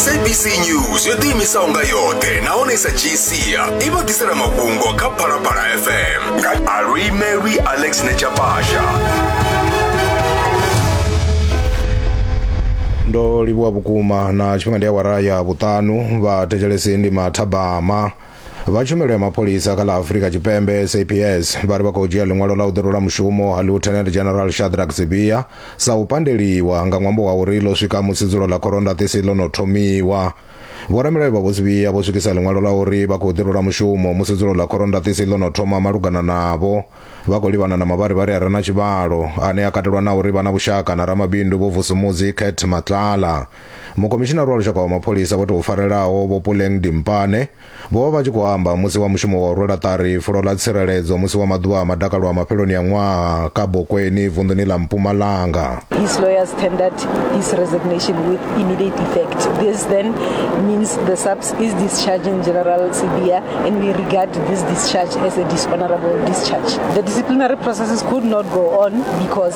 sabc news yo ḓiimisaho nga yoṱhe nahone sa gcia i vha ḓisela mafhungo kha phalaphala fm nga alwimelwi alex nechapasha ndo livhuwa vhukuma na tshifhinga ndi awara ya vhuṱanu vha thetshelesi ndi mathabama vha tshumelo ya mapholisa kha ḽa afurika tshipembe saps vha ri vha khou dzhia ḽiṅwalo ḽa u ḓirula mushumo ha lieutenant general shadrack sibia sa u pandeliwa nga ṅwambo wa uri ḽo swika musi dzulo ḽa khorondaṱisi ḽo no thomiwa vhoramilayo vha vho sibia vho swikisa ḽiṅwalo ḽa uri vha khou ḓirula mushumo musi dzulo ḽa khorondaṱisi ḽo no thoma malugana navho vha khou livhana na mavharivhari a re na tshivhalo ane a katelwa na uri vha na vhushaka na ramabindu vho vusumudzi cat matlala mukomishinari wa lushaka wa mapholisa vho tou farelaho vho puleng dimpane vho vha vha tshi khou amba musi wa mushumo wa u rwela ṱari fulo ḽa tsireledzo musi wa maḓuvha a madakalo a mafheloni a ṅwaha kha bokweni vunḓuni ḽa mpumalanga His lawyers tendered his resignation with immediate effect. This then means the SAPS is discharging General Sibia, and we regard this discharge as a dishonorable discharge. The disciplinary processes could not go on because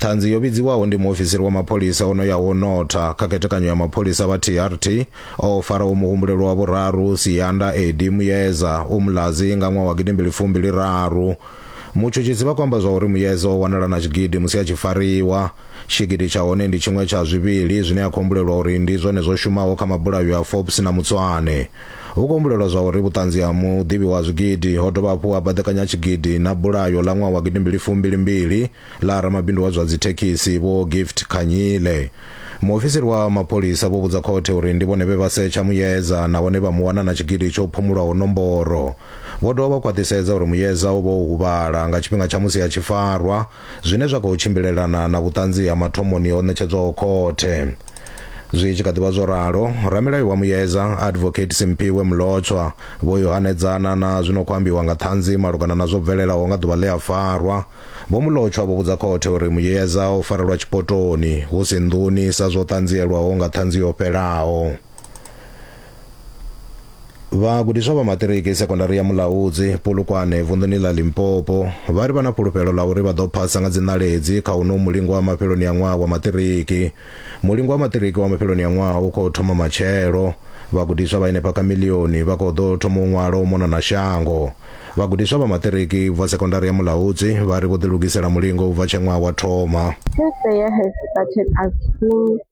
ṱhanzi yo vhidziwaho ndi muofisiri wa mapholisa o no ya ho notha kha khethekanyo ya mapholisa vha trt o faraho muhumbulelwa wa vhuraru sianda edi muyeza u mulazi nga ṅwaha wa gidimbili fumbili raru mutshutshisi vha khou amba zwa uri muyeza o wanala na tshigidi musi a tshi fariwa tshigidi tsha hone ndi tshiṅwe tsha zwivhili zwine a khou humbulelwa uri ndi zwone zwo shumaho kha mabulayo a forbes na mutswane Hu khou humbulelwa zwa uri vhuṱanzi ha muḓivhi wa zwigidi ho dovha hafhu ha baḓekanya tshigidi na bulayo ḽa ṅwaha wa gidimbili fumbili mbili ḽa ramabindu wa zwa dzithekhisi Vho Gift Khanyile. Muofisiri wa mapholisa vho vhudza khothe uri ndi vhone vhe vha setsha Muyeza nahone vha mu wana na tshigidi tsho phumulwaho nomboro. Vho dovha vha khwaṱhisedza uri Muyeza o vha o huvhala nga tshifhinga tsha musi a tshi farwa. zwine zwa khou tshimbilelana na vhuṱanzi ha mathomoni ho ṋetshedzwaho khothe zwi tshi kha ḓivha zwo ralo ramilayo wa muyedza advocate simphiwe mulotshwa vho yo hanedzana na zwino khou ambiwa nga ṱhanzi malugana na zwo bvelelaho nga ḓuvha ḽe a farwa vho mulotshwa vho vhudza khothe uri muyedza o farelwa tshipotoni hu si nḓuni sa zwo ṱanzielwaho nga ṱhanzi yo fhelaho vhagudiswa vha maṱiriki sekondari ya mulaudzi polokwane vunḓuni ḽa limpopo vha ri vha na fhulufhelo ḽa uri vha ḓo phasa nga dziṋaledzi kha uno mulingo wa mafheloni a ṅwaha wa maṱiriki mulingo wa maṱiriki wa mafheloni a ṅwaha u khou thoma matshelo vhagudiswa vha henefha kha milioni vha khou ḓo thoma u ṅwala u mona na shango vhagudiswa vha maṱiriki bva sekondari ya mulaudzi vha ri vho ḓilugisela mulingo u bva tshe ṅwaha wa thoma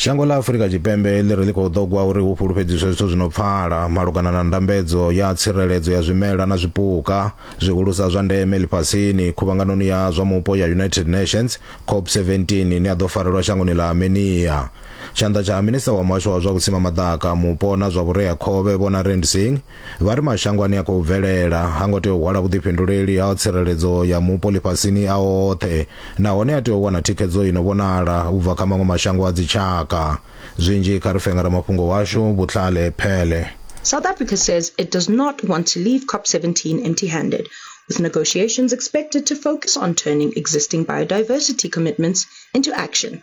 shango ḽa afurika tshipembe ḽi ri ḽi khou ṱogwa uri hu fhulufhedziswe zwithu zwi no pfala malugana na ndambedzo ya tsireledzo ya zwimela na zwipuka zwihulusa zwa ndeme ḽifhasini khuvhanganoni ya zwa mupo ya united nations cop 17 ine ya ḓo farelwa shangoni ḽa armenia tshanḓa tsha minista wa muhasho wa zwa vhusima maḓaka mupo na zwa vhureakhovhe vhona rendsing Vha ri mashango ane a khou bvelela ha ngo tea u hwala vhuḓifhinduleli ha tsireledzo ya mupo ḽifhasini a oṱhe nahone a tea u wana thikhedzo i no vhonala u bva kha maṅwe mashango a dzitshaka. Zwinzhi kha ri fe nga ramafhungo washu, Butlale Pele. South Africa says it does not want to leave COP17 empty-handed, with negotiations expected to focus on turning existing biodiversity commitments into action.